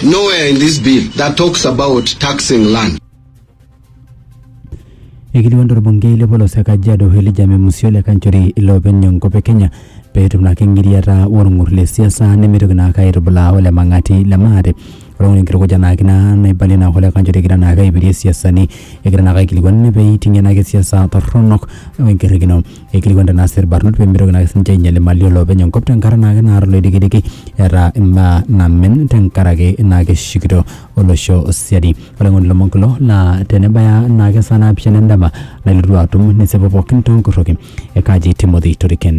Nowhere in this bill that talks about taxing land. Eikilikuan torbungei le polos e Kajiado Elijah Memusi ole Kanchori iloopeny enkop e Kenya pee etum naake eng'iriata olng'ur le siasa nemeitoki naake aitubulaa ole Mang'ati le maate. Ore ng'ole enkitukuja naake ina naibalie naake ole Kanchori egira naake aipirie siasani egira naake aikilikuan ninye pee eiting'ie naake siasa torronok o enkiririkino. aikilikuan tenaa sii irbarnot pemitoki naake sininche ainyial imali olopeny enkop tenkata naake naata oloidikidiki eeta imbaa namen tenkaraki naa keshukito olosho siadi olainining'oni lomon kulo naa tenebaya naake esaa naapishana endama nailotu atum nesipu pookin tonkorroki e Kaji Timothy Toriken.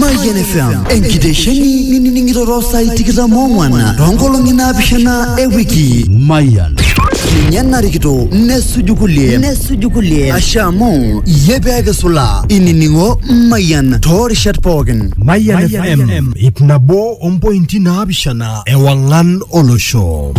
Mayian FM enkitesheni nining'iroro saai tikitam oong'wan toonkolong'i naapishana e wiki. Mayian. Ninye narikito nesuju kulie nesuju kulie ashe amu iyie pee kisulaa inining'o Mayian toorishat pookin. Mayian FM ip nabo ompointi naapishana ewang'an olosho.